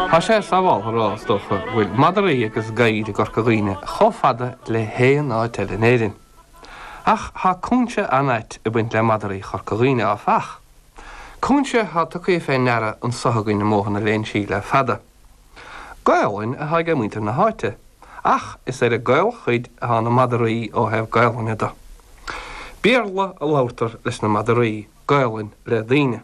Tá sé sabháltha a rá, is dócha, go bhfuil madraí agus gadhair i gCorca Dhuibhne chomh fada le haon áit eile in Éirinn. Ach tá cúinse an-ait ag baint le madraí Chorca Dhuibhne, áfach. Cúinse atá tugtha fé ndeara anso againn i mBóthar na Léinsí le fada. Gaolainn atá ag muintir na háite, ach is ar an gcaolchuid atá na madraí ó thaobh Gaolainne do. Béarla a labharthar leis na madraí, Gaolainn le daoine.